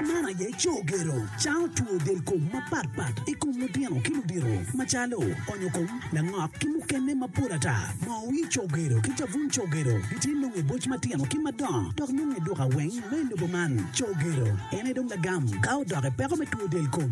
Man aye co gero cango two del kom mapat pat i kom lutino ki ludito macalo onyo kom, langok ki mukene mapol ata. Moo wii co gero ki cabun co gero gitye nongo i boc matino ki madongo dok nongo i duka weng me lobo man. Co gero en aye dong lagam ka odok i peko me two del kom.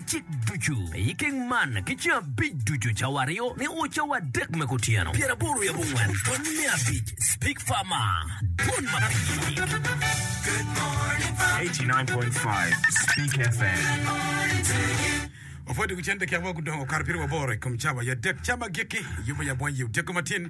Cik ducu me i keng man ki ceng abic ducu, cawa aryo nio o cawa adek me kutyeno. Pyer aboro yabo ngwen pwony me abic Speak Farmer Dwon ma pii. 89.5 Speak FM. Opwoddi gu cente kek wa gudongo okato pire waboro i kom cawa ya dek. Cawa ma gikki yubo ya bwonyi odyego matin.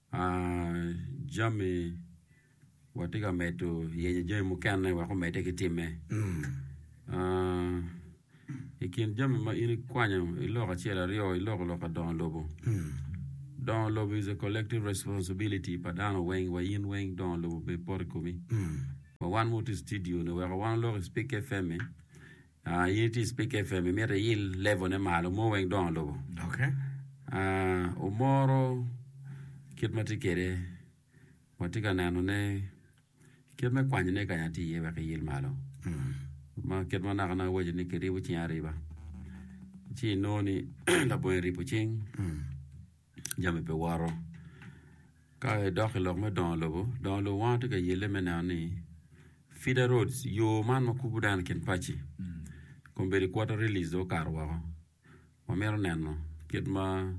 Jami, watye ka medo yenyo jami mukene wek omedde ki timme. I kin jami ma in ikwanyo iloko acel aryo iloko lok pa dongo lobo. Dongo lobo is a collective responsibility pa dano weng wa in weng dongo lobo pe pot i komi. Wa wan ma watye i cidio ni weko wan olok i Spik FM-mi Ah in iti Speak FM imito iyil level ne malo mo weng dongo lobo. Okay. Ah omoro kit ma tye kede watye ka neno ne kit me kwanyo ne kanya tye iye wek iyil malo. Mm. Ma kit ma naka naka wacho ni kiribo cing ariba. Ci inongo ni labongo iribo cing. Mm. jami pe woto. Ka idok i lok me dongo lobo, dongo lobo wan watye ka yelle me neno ni feeder roads, yo man ma kubo dano i kin paci kombeddi i quarter release dong okato woko. Wamito neno kit ma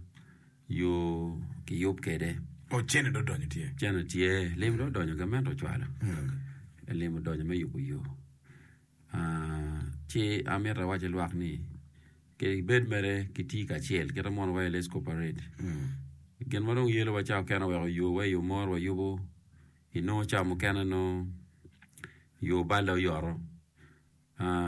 yo kiyub kwede. Oh, cene dong odonyo tye. Cene tye, lim dong odonyo, gamente ocwalo. Lim odonyo me yubo yo. Ci amito awac ki lwak ni kare bed mere kitye kacel kit ma mono wayo let's cooperate gin ma dong yelowa ca mukene oweko oyowa i yo mo nongo wayubo inongo ca mukene nongo yo balle oyoto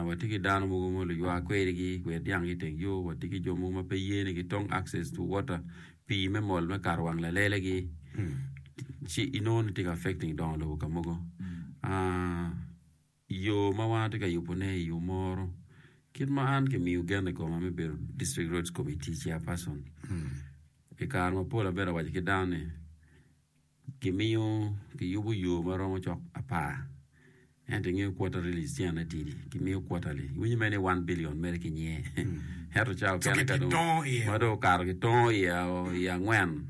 watye ki dano mogo ma luywa kwedigi gwer dyanggi iteng yo watye ki jo mogo ma pe yene gitong access to water pii me mol me kato wang lalelegi ci inongo ni tye ka affecting dongo lobo ka mogo. i yo ma wan atye ka yubone i yo moro kit ma an kimiyo gen i koma me bedo district roads committee chair person i kare mapol abedo awaco ki dano ni kimiyo kiyubo yo ma romo cok apar ento ingeyo quarter really is cene tidi kimiyo quarterly iwinyo mere ni one billion mere kinye ento ca okene ka dong ma dong okato kitongo i angwen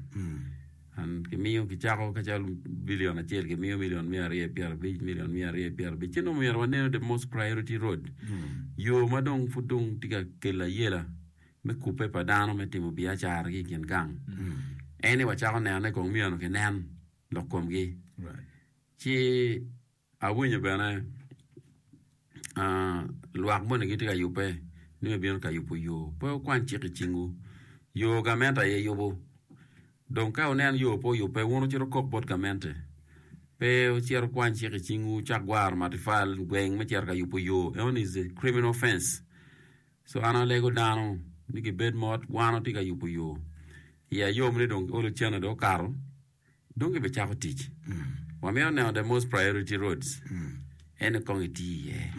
Kimiyo, kicako ka calo billion acel, kimiyo million mia aryo pyera abic, million mia aryo pyera abic. Ci dong myero waneno the most priority road. Yo ma dong pud dong tye ka kelo ayela me kubbe pa dano me timo biacara ki i kin gang. En ni wacako nenone kong miyone kinen lok komgi. Ci Awinyo bene lwak moni gitye ka yubbe ni me bino ka yubo yo. Pe wukwan cik i cingwu. Yo gamente aye yubo. Dong ka wuneno yo pe oyubbe, wun wucit wukok bot gamente. Pe wucit wukwan cik i cingwu, wucak gwaro matipal i gweng me cito ka yubo yo. Enoni is a criminal offence. So an alego dano ni gibed mot, wan watye ka yubo yo. Iya yom ni dong olo cene dong okato. Dong ki bicako tic. Wa mito neno the most priority roads. Ene kong iti iye.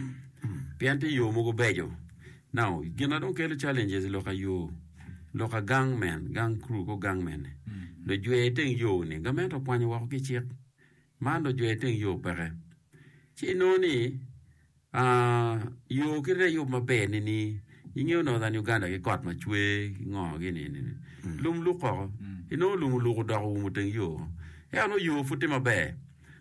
Pien ti yo mogo bejo. Now, gin na dong kelo challenges loka yo, loka gang men, gang crew ko gang mene. Lujwe iteng yo ni, gament okwanyo woko ki cik. Man lujwe iteng yo peke. Ci inongo ni, Aah yo kit aye ayub maber ni ni ingeyo northern Uganda ki got ma cwe ki ngo gi ni ni lum luk koko inongo lum oluk odok oumo teng yo eka nongo yo pud tye maber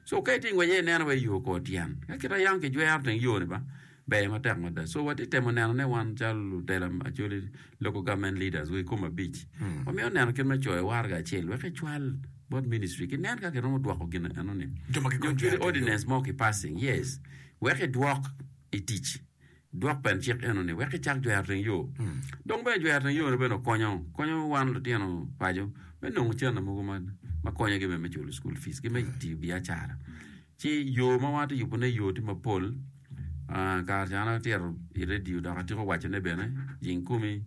so ka itye ingwec aye ineno wai yo kor tyen ka kit aye an kijwero teng yo ni ba ber matek mada so watye temo neno ne wan calo lutela actually local government leaders wa ikom abic wamito neno kit me coyo waraga acel wek ecwal bot ministry kinen ka kiromo dwoko gin eno ni Jo ma gikony nyo kit kwede. ordinance mo ki passing yes wek idwok i tic. Dwok bene cik eno ni wek icak jwero teng yo. Dong bene jwero teng yone bene okonyo konyo wan lutino paco me nongo cente mogo ma ma konyogi bene me culo school fees ki me tiyo biacara. Ci yo ma wan atye ka yubone yo tye mapol. Ah, kare ca an atyero i redio dok atyeko wacone bene, jing kumi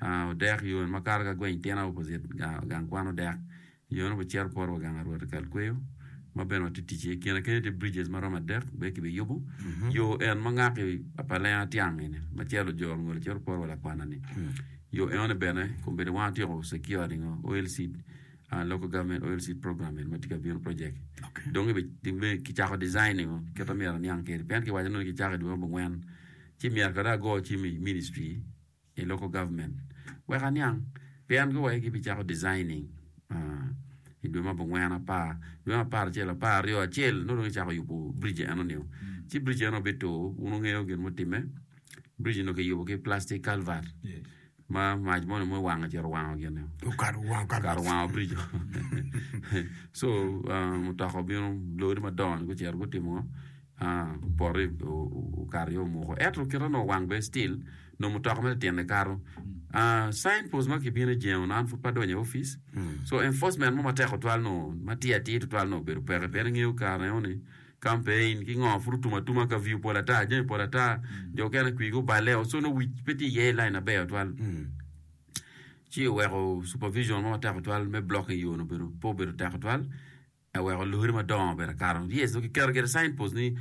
ah, odek yo eni makato ka gweng Tina opposite ga- gang kwan odek. Yone wacito kuru wa gang a Rwot i kal kweyo, ma bene watye tic iye. Kine kene tye bridges ma romo adek bene kibiyubo. Yo en ma ngaki pa lenga tiang eni, ma celo jo lungolo cito kuru wa lakwana ni. Yo eone bene kombeddi wang atyeko secured ingo oil seed, ah, local government oil seed program eni ma tye ka bino project. Dong kibi, kibi, kicako design ingo kit ma myero aniang kede. Pien kiwaco nongo ni kicako i dwe ma abongwen, ci myero kare ago cim i ministry, i local government wek aniang pien gi wai gi bi cako designing i dwe ma bungwen apar dwe apar acel apar aryo acel nongo dong icako yubo bridge eno nio ci bridge eno bi tur wun wungeyo gin mutime bridge nongo ki yubo ki plastic calvert ma mac moni ma wango cito wango gin nio Okato wango kar kar wango bridge so mutoka obino lori madongo ni gucito gutimo Ah pote okato yo muko eto kita nongo wang be still nongo mutoka ma tyene kato. Ah sign post ma kibino e jengo an pud pa donyo e office. So enforcement mo matek otwal nongo ma tye atir tutwal nongo obedo peke pien ingeyo kare eno ni campaign ki ngo pud otum atuma ka view pol ata jami pol ata jo okene kwigi oballe o so nongo wic pe tye iye line aber tutwal. Ci oweko supervision mo matek tutwal me blocking yo ni obedo pe obedo tek tutwal. I weko luri madongo bene kato yes dong ki keto gire sign post ni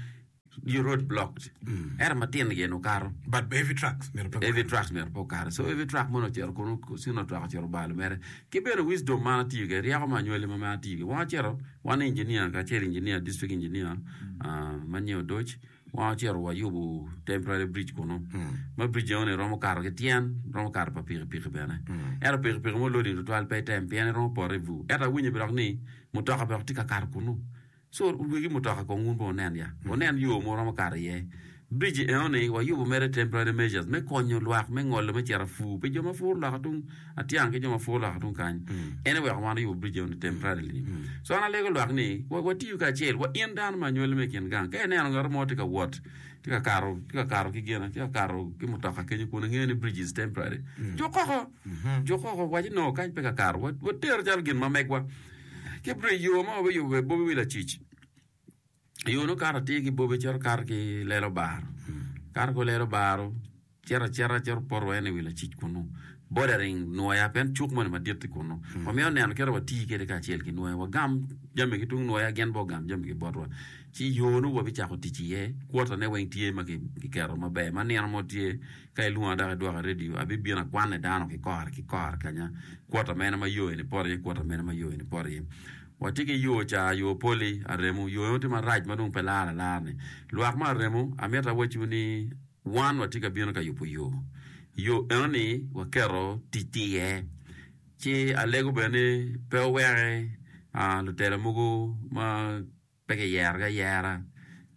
your road blocked ento matino gire dong kato But heavy trucks myero pe every truck myero pe okato so every truck mono ocito kunu sino truck ocito obalo mere ki bene wisdom ma an atiyo kwede ryeko ma anywali ma mere atiyo kwede wong acito wan engineer kacel engineer district engineer ah, ma nyo odoc Wacito wayubo temporary bridge kunu. Mm. Ma bridge eno ni romo kato ki tyen, romo kato pa pikipiki bene. Mm. Ento pikipiki mo loading tutwal pe item pien iromo poto i vu. Ento awinyo bene ni mutoka bene tye ka kato kunu. So wegi mutoka kong wun bene wunen ya. Mm. Wunen yo mo romo kato iye. Bridge eno ni wayubo mere temporary measures me konyo lwak me ngolo me cito afu pi jo ma puro lok atung Atyang ki jo ma pwoo lwak tung kany. En eweko wan oyubo bridge eno ni temporarily. So an alego lwak ni wa, watiyu kacel wa in dano ma anywali me kin gang. Ka ineno ngato mo tye ka wot, tye ka kato, tye ka kato ki gin, tye ka kato ki mutoka kenyo kun ingeyo ni bridge is temporary. Juk koko. Juk koko waci no kany pe ka kato. Wa, water calo gin ma megwa. Ki bridge yo ma wabiyubo be bobi wi lacic. Yo nongo kato atir ki bobe cito kato ki lelo baro. Kato ki lelo baro cito acita cito poto wa ene wi lacic kunu. Bordering nwoya pen cuk moni madit i kunu. Mm. Wamiyo neno kito wa ti kede kacel ki nwoya. Wagam jami ki tung nwoya gen bo gam jami ki botwa. Ci yo nongo wabi cako tic iye. Kwota ne weng tye ma kiketo maber. Ma nino mo tye ka ilunga dok idwaka radio abi bino akwane dano ki kore ki kore kanya. Kwota mene ma yo eni poto iye kwota mene ma yo eni poto iye. Watye ki yo ca, yo poli, aremo. Yo eno tye marac ma dong pe laro alar-ni. Lwak me aremo, amito awacciwu ni wan watye ka bino ka yubo yo. Yo eno-ni waketo ticci iye. Ci alego bene ni pe oweke lutela mogo ma pe kiyerogi ayera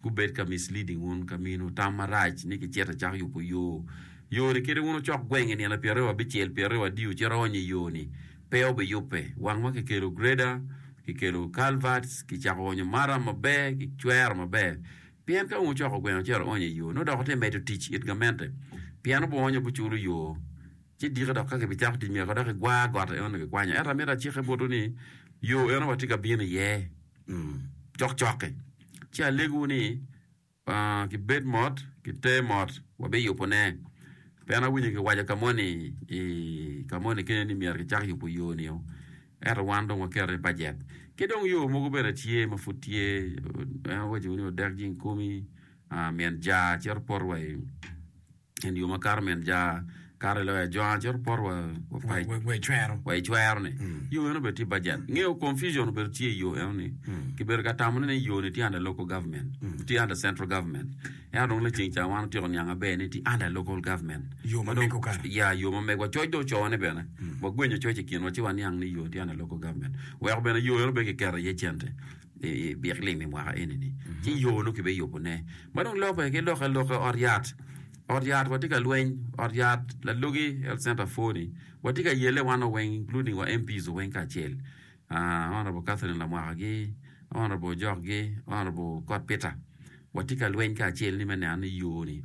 Gubed ka misleading wun ka minu tam marac ni kicito icako yubo yo. Yo-ni kite wun ocok gweng i nino pyeraryo abicel, pyeraryo adio ci rony i yo-ni, pe obiyubbe. Wangwa kikelo grader, kikelo culverts, kicako onyo maram maber, kicwero maber. Pien ka wun wucoko gweng acel aonyo i yo, nongo dok wutye medo tic it gamente. Pien obwonyo buculo yo. Ci diki dok ka kibicako tic myeko dok kigwar got aye onongo kikwanyo. Ento amito acike botwu ni, yo eno watye ka bino iye cokcok-ki. Ci alegowu ni, kibed mot, kite mot, wabiyubone. Pien awinyo kiwaco ka moni i ka moni kenyo ni myero kicak yubo yo nio, ento wan dong waketo ni bajet. Ki dong yo mogo bene tye ma pud tye, en owacowu ni odek jing kumi, myen ja cito poto wa i. En yo ma kato min ja kato loyo ajwanga cito pot wa wa icwero. Wa icwero ni. Mm. Yo eno bedo tye budget. Mm. Ngeo confusion bedo tye yo eno ni. Mm. Ki bedo ka tamo ni yo ni tye under local government. Mm. Tye under central government. Eno dong le ceng cha wan otiko niang aber ni tye under local government. Yo ma meko kara. Ya yo ma meko. Coc do cowa ni bene. Mm. Wa gwenyo coc ikin wa ci wa niang ni yo tye under local government. Weko bene yo eno be ki kera ye cente. i byek lim i mwaka eni ni ci yo nongo kibe yubo ne ma dong loke ki loke loke ot yat ot yat wa tye ka lweny ot yat lalogi health center four ni wa tye ka yele wan o weng including wa MPs o weng kacel honorable Catherine Lamwaka gi honorable Ojok gi honorable Kot Peter wa tye ka lweny kacel ni me neno ni yo ni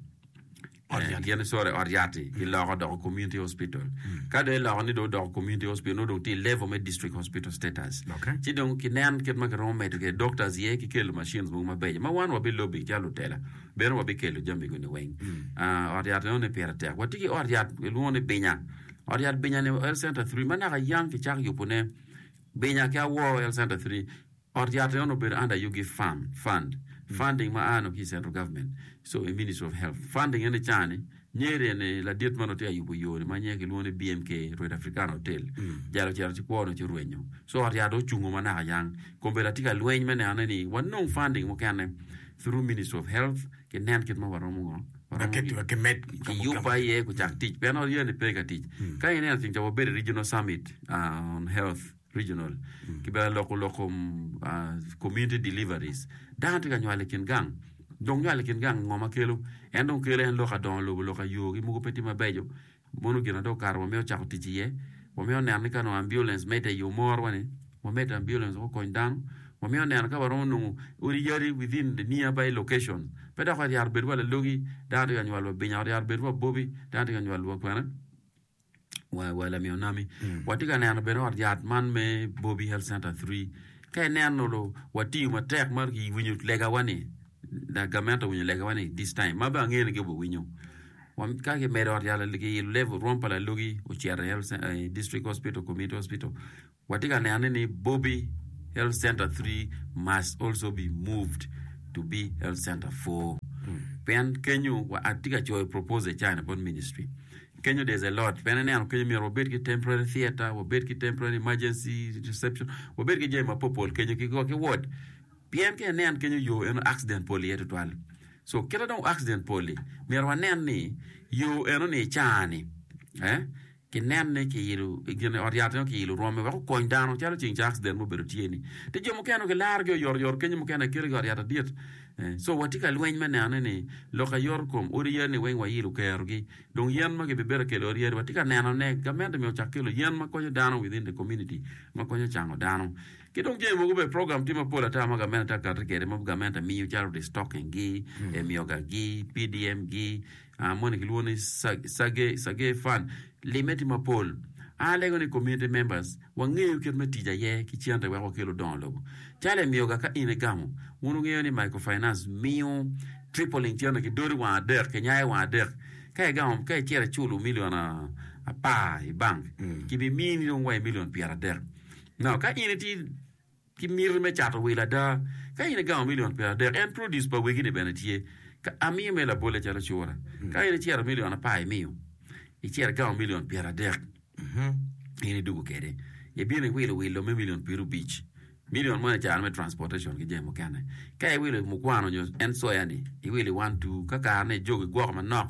Ot yat yani sorry ot yati iloko doko community hospital ka do iloko ni do doko community hospital no dong ti level me district hospital status Okay. ci dong kinen kit ma kiromo medo ke doctors ye ki kelo machines mogo mabeco ma wan wabi lobi calo lutela bene wabi kelo jami guni weng Ah, ot yat enoni pire tek wati ki ot yat ilwongo ni binya ot yat binya ni health center 3 ma naka yam kicako yubone binya ki awor health center 3 Ot yat ni onongo obedo under Yugi Fund, fund, funding ma aa nongo ki i Central Government, so i Ministry of Health. Funding ene ca ni, Nyeri ene ladit ma nongo tye ka yubo yo ni ma nyinge ki lwongo ni BMK Red Africana Hotel, jalo ocito ci kwo nongo ci orwenyo. So ot yat ni ocungo ma naka yang. Kombeddi atye ka lweny me neno ni wa nong funding mukene through Ministry of Health ki nen kit ma wa romo ngo, wa romo ki, Ki med ki kamo yup kamo. aye ku cak tic. Pien ot yat ni pe ka tic. Ka i neno ceng ca wa bedo i Regional Summit aa on Health. Regional, ki bene loko lok kom Community Deliveries. Dano tye ka nywalo i kin gang, dong nywalo i kin gang ngo ma kelo? En dong kelo en lok ka dongo lobo, lok ka yo gi mogo pe tye mabeco. Mono gin adong okato wamito cako tic iye. Wamito neno ni ka onongo ambulance medde i yo moro ni, wamed ambulance woko kony dano. Wamito neno ka waromo nongo odi yadi within the near by location. Pe dok wa ryaro bedo wa lalogi, dano tye ka nywalo wa binya, oryaro bedo wa bobi, dano tye ka nywalo wa kwene. Watye ka neno bene ot yat man me Bobi Health Center Three. Ka ineno dong watiyo matek ma kiwinyo legawa-ni, gamente owinyo legawa ni this time, ma bene angeyo ni gin guwinyo. Ka kimedo ot yat, kiilo level rwom pa lalogi ocito i District Hospital, Community Hospital. Watye ka neno ni Bobi Health Center three must also be moved to be Health Center four pien kenyo wa atye ka coyo proposal i China bot ministry kenyo there's a lot pien ineno kenyo myero wabed ki temporary theater, wabed ki temporary emergency reception, wabed ki jami mapol pol kenyo ki wa ki ward pien ka inen kenyo yo eno accident pol iye tutwal so kite dong accident pol-li myero wanen ni yo eno ni i China-ni eh kinenne ki ilo i gin i ot yat nyo ki ilo rwome wek okony dano calo ceng ca accident mo obedo tye ni ti jo mukene ki laro gi oyoto yoto kenyo mukene kelo gi ot yat adit so watye ka lweny me neno ni ni lok aye yoto kom odi yadi ni weng wa ilo kero gi dong yen ma gi bi bedo kelo ot yadi watye ka neno ne gamente myero ocak kelo yen ma konyo dano within the community ma konyo cango dano ki dong jami mogo bene program tye mapol ata ma gamente ti ka kati kede ma gamente miyo calo restocking gi emiyoga gi PDM gi moni kilwongo ni Sergey Fund, limme tye mapol. An alego ni Community Members wangeyo kit me tic aye ki cente wek wakel odongo lobo. Calo emiyoga ka in igamo, wun wungeyo ni microfinance miyo tripling cente ki doti wang adek, kinyaye wang adek. Ka igamo, ka icito iculo million apar i bank, kibimini dong wa i million pyeradek. Now, ka in itye. ki miti me cato wil ada. Ka in igango milion pyeradek, en produce pa wegi ni bene tye. Ka amiyo me labolle calo cura, ka in icero milion apar imiyo, icero igango milion pyeradek, in idugo kede, ibino iwilo wilo me milion pyerubic. Milion moni icano me transportation ki jami mukene. Ka iwilo mukwano nyo en soya ni, iwilo i one two, ka kare ne ijog igwoko manok,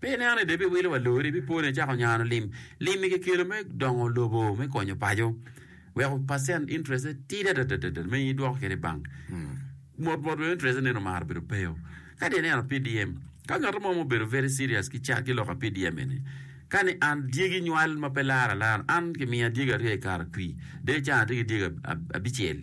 Pi ineno-ni dong ibiwilo wa lori, ibipone icako nyano lim. Lim-mi kikelo me dongo lobo, me konyo paco. Weko percent interest-te tidi adadadada ma in idwoko kwede i bank. Mot mot bene interest-te neno omaro bedo peyo. Ka dong ineno PDM, ka ngat mo ma obedo very serious ki ca ki lok pa PDM eni, kani an dyegi nywal ma pe lar alar, an kimiya dyegi aryo i kare atwi, dong i caa atye ki dyegi ab- ab- abicel.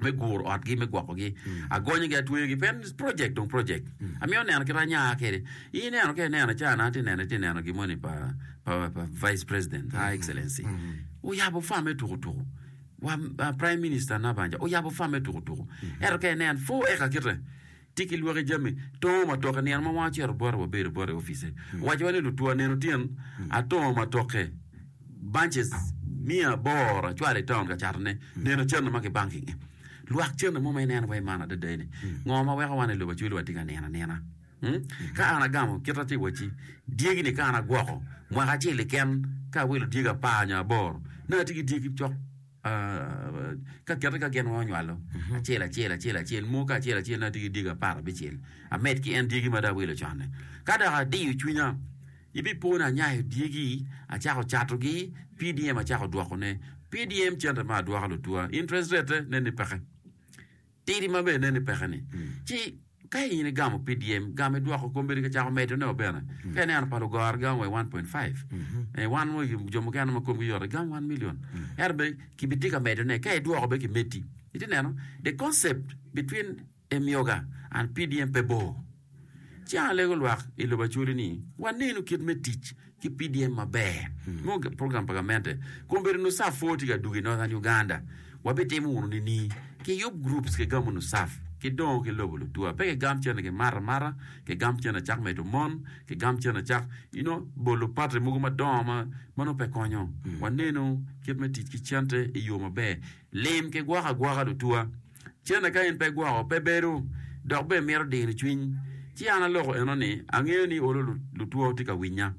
me guro otgi me gwoko gi agonyo gi atweyo gi pen project dong project amiyo neno kita anya kede i neno ke neno cha na ti neno ti neno gimoni pa pa pa vice president ha excellency uyabo farm me tuku tuku wa prime minister na banja uyabo farm me tuku tuku ento ke nen four acre kite Tika ilwaki jami? Tongo matoke, Nino ma wanga cito bota wabedo bota i opice, owacowa ni lutwo aneno tyen atongo matoke bunches miya aboro acwalo i taun ka catone. Nino cente ma kibanking-nge. Lwak cente mo ma ineno wa i man adada eni. Ngo ma weko wan i lobo acwele watye ka nino anina? Hmm? Ka an agamo kit ma tye i wacci, dyegi-ni ka an agwoko mwaka acel keken ka awilo dyegi apar nyo aboro, nongo atye ki dyegi cok. Ka kite ka gin weng onywalo, acel acel acel acel, mo ka acel acel na tye ki dyegi apar abicel, amed ki en dyegi ma dong awilo con-ni. Ka dok adiyo cwinya, ibipona anyayo dyegi, acako catogi, PDM acako dwokone. PDM cente ma adwoko lutwa, interest rate-te nen ni peke. Tidi ma bene neni pekeni. Ci, ka in igamo PDM, gam i dwoko kom bene ki cako medo ne o bene. Ka ineno pa lugoro gamo wa i one point five. Eh, wan wa jo mukene ma komgi yot igam one million. Ento be ki bi tye ka medo ne. Ka idwoko be ki medi. Iti neno? The concept between Emyoga and PDM pe bor. Ci an alego lwak i lobo Acoli ni wanenu kit me tic ki PDM maber mo program pa gamente. Kun obedo Nusaf pwor tye ka dugo i Northern Uganda. Wabitimo wunu nini? Kiyub groups kigamo Nusaf, kidongo ki lobo Lutua. Pe kigam cen ni kimato amata, kigam cen ni cak medo mon, kigam cen ni cak you know, bolo party mogo madongo ma ma nongo pe konyo. Wanenu kit me tic ki cente i yo maber. Lim ki gwoko agwoka Lutua. Cene ka in pe gwoko, pe bedo, dok bene mito dino cwiny. Ci an aloko eno ni, Angeyo ni olo lutwo tye ka winya.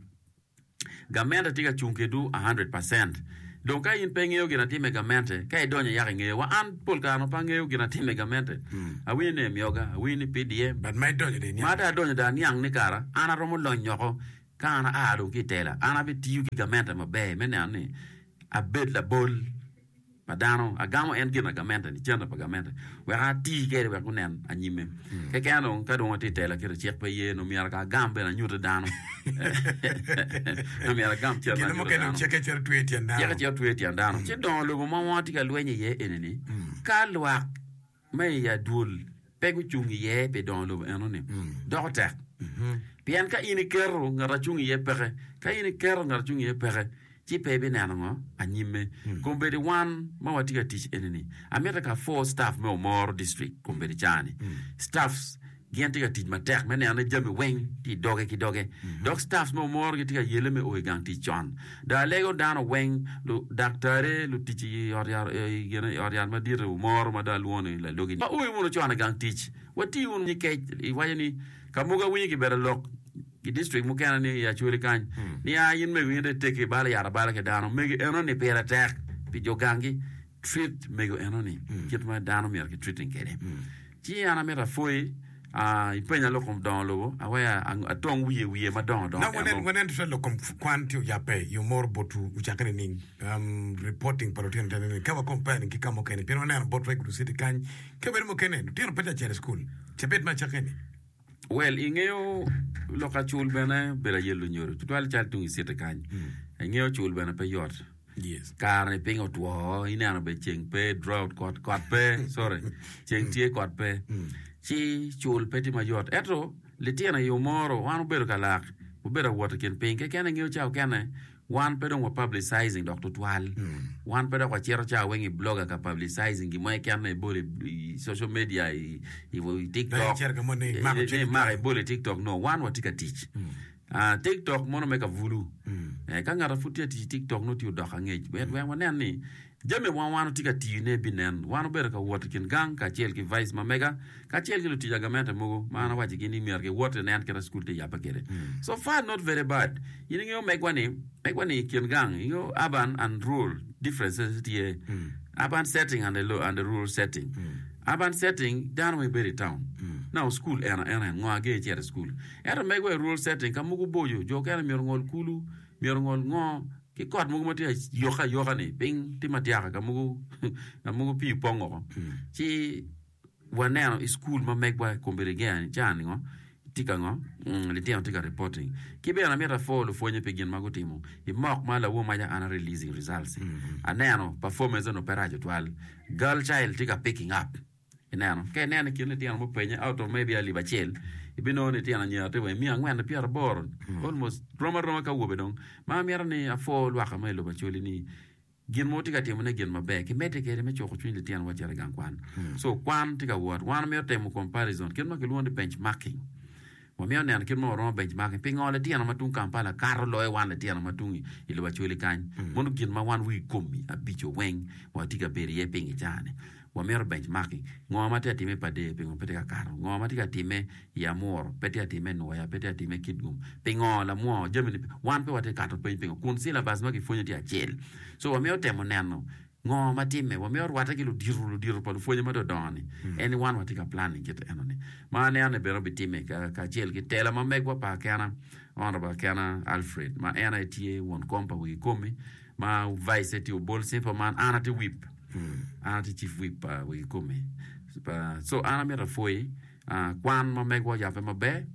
Gamente tye ka cung kedwu a hundred percent. Dong ka in pe ingeyo gin atime gamente, ka idonyo yako ingeyo. Wa an pol kare onongo pe angeyo gin atime gamente. Awinyo ni emyoga, awinyo ni PDM. But ma idonyo dong iniang. Ma dong adonyo dong aniang ni kara an aromo lony oko ka an aa dong ki i tela, an abitiyo ki gamente maber me neno ni abed labol. ma dano, agamo en gin agamente, licente pa gamente, wek ati kede wek gunen anyime. Keken dong, ka dong atye tela kit cik pe ye, no myero ka agam bene anyute dano. no myero agam cente anyute dano. Gin mukene cik ecito twe i tyen dano. Cik ecito twe i tyen dano. Ci dongo lobo ma wongo atye ka lweny iye eni ni, ka lwak ma i adwol pe gucung iye pi dongo lobo eno-ni doko tek. Pien ka in iketo ngat acung iye peke, ka in iketo ngat acung iye peke, ci pe ibineno ngo anyimme. Kombeddi wan ma watye ka tic eni-ni, amito ka four staff me Omoro District kombeddi caa-ni. Staffs Gin tye ka tic matek me neno ni jami weng tye i doge ki doge, dok staffs me omoro gitye ka yele me o i gang tic con. Daa lego dano weng, ludaktare, lutic i ot yat madit i omoro ma daa lwongo ni lalogi ni, Waoyo wunu con i gang tic, wati wunu nyig kec. Iwaco ni, Ka mogo awinyo kibedo lok i district mukene ni i Acholi kany ni, 'A in mego in dong itegi ibalo yat abala ki dano, mego enoni pire tek pi jo gangi, treat mego enoni kit ma dano myero ki treating kwede. Ci an amito apwoyi, aa, ipenya lok kom dongo lobo, awea atong wiye wiye madongo dongo. Now wanen, wanen tutwal lok kom kwan ci oyabbe i yo moro bot u ocakke nining, um, reporting pa lutino te nining, ka wa compare nining ki ka mukene, pien waneno bot Red Blue City kany, kabedo mukene lutino peca cito i school, cabit me acakke ni. Well, i ngeyo lok acul bene bedo aye lunyodo tutwal cal tung i city kany. I ngeyo acul bene pe yot. Yes. Kare ni piny otwo, ineno be ceng pe, drought kot, kot pe, sorry. Ceng tye kot pe. Ci cul pe tye mayot. Eto litino i yo moro, wan obedo ka lak, obedo awot i kin piny. Kekene ngeyo ca okene, Wan pe dong wa-publicizing dok tutwal. Wan pe dok wacito cawa weng i blogger ka publicizing gin mo keken ma ibolo i social media, i, i, i TikTok. Dong icito ka mo ni imako cwiny Ni maka twal. ibolo i TikTok. No, wan watye ka tic. Ah, TikTok mono me ka bulu. Eh, ka ngat ma pud tye ka tic i TikTok nongo tye odoko angec. Wek wek wanen ni Jami ma wan watye ka tiyone binen. Wan wabedo ka wot i kin gang kacel ki vice ma mega kacel ki lutic agamente mogo ma an awaccigi ni myero giwot i nen kit cukul tye yabbe kwede. So far not very bad. In ingeyo megwa ni, megwa ni i kin gang, ingeyo urban and rural differences tye. Urban setting and a, and a rural setting. Urban setting dano weng bedo i town. Now cukul en, en, en, ngo ager icito i cukul. Ento megwa i rural setting ka mogo boco, jo okene myero ongol kulu, myero ongol ngo, ki kot mogo matye ayoka ayoka ni piny tye madyaka ka mogo ka mogo pii opong oko ci waneno i school ma megwa i kombe ligea ni can ngo tye ka ngo mm, litino tye ka reporting ki bene amito apor lupwonye pi gin ma gutimo i mock ma lawo maca an a releasing results aneno performance onongo pe raco twal girl child tye ka picking up Ineno? Ka ineno i kin litino mupenye auto maybe alip acel, ibinongo ni tyen anyira tye wa i miya angwen ni pyera aboro, almost rom aroma ka awobe dong. Ma amito ni apwoo lwaka ma i lobo Acholi ni gin ma wutye ka timo ne gin maber, kimedde kwede me cuko cwiny litino wa cito i gang kwan. So kwan tye ka wot, wan wamito timo comparison, kit ma kilwongo ni benchmarking. Wamito neno kit ma oromo bec magi pingo litino ma tung Kampala kato loyo wan litino ma tung i lobo Acholi kany. Mono gin ma wan wigi komi abico weng watye ka bedo iye ping i caa-ni. Wamito bec magi. Ngo ma tye ka timme i Padee? Pingo pe tye ka kato? Ngo ma tye ka timme i Amuru? Pe tye ka timme i Nwoya? Pe tye ka timme i Kitgum? Pingo lamwo jami-ni pe? Wan pe watye ka kato peny pingo kun silabas ma kipwonyo tye acel. So wamito temo neno Ngo ma timme wa me orwatte ki ludito ludito pa lupwonye ma dodongo ni? En ni wan wa tye ka planning kit eno ni. Ma aneno ni bene obi timme ka kacel ki tela ma megwa pa akena Honorable Akena Alfred ma en aye tye won kom pa wigi komi ma vice tye Obol Simple man an atye whip an atye chief whip pa wigi komi pa so an amito apwoyi ah, kwan ma megwa oyape maber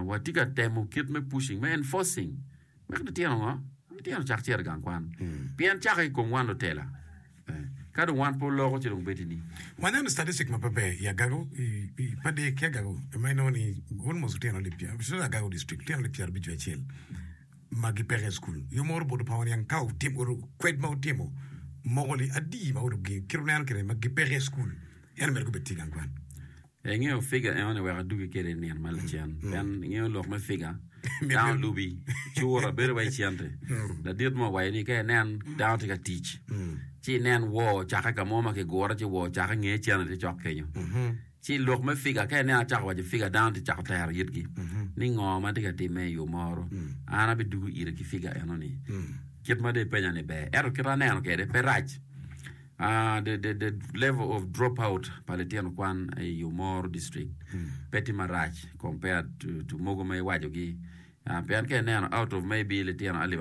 watye ka temo kit me pushing, me enforcing, me ki litino ngo? Litino cak cito i gang kwan. Mm. Pien cako i kom wan lutela. Eh, ka dong wan pe oloko ci dong bedi ni. Waneno statistic ma pe ber i agago i pa dek ki agago ma inongo ni almost lutino alip pyera especially agago district lutino alip pyera abic acel ma gipeke i school yo moro bodo pa waniang ka utim uru kwed ma utimo moko li adi ma uru gi kiro neno kire ma gipeke i school eno mere gubed tye gang kwan Ee, ingeyo figa enoni wek adugi kwede i nino ma lacen. Pien ingeyo lok me figa, dano lubi, cura bedo wa i cente. Ladit mo owaco ni ka inen dano tye ka tic, ci inen woo ocakke ka mo ma kigure ci woo ocakke inge cene tye cok kenyo. Ci lok me figa, ka inen acako waco figa, dano tye cako tero yitgi ni ngo ma tye ka timme i yo moro, an abidugu ire ki figa enoni. Kit ma dong ipenya-ni ber, ento kit aneno kwede pe rac. Uh, the, the, the level of dropout pa litino kwan i Umoro district pe tye marac compared to, to mogo ma iwacogi. Uh, pien ka ineno out of maybe litino alip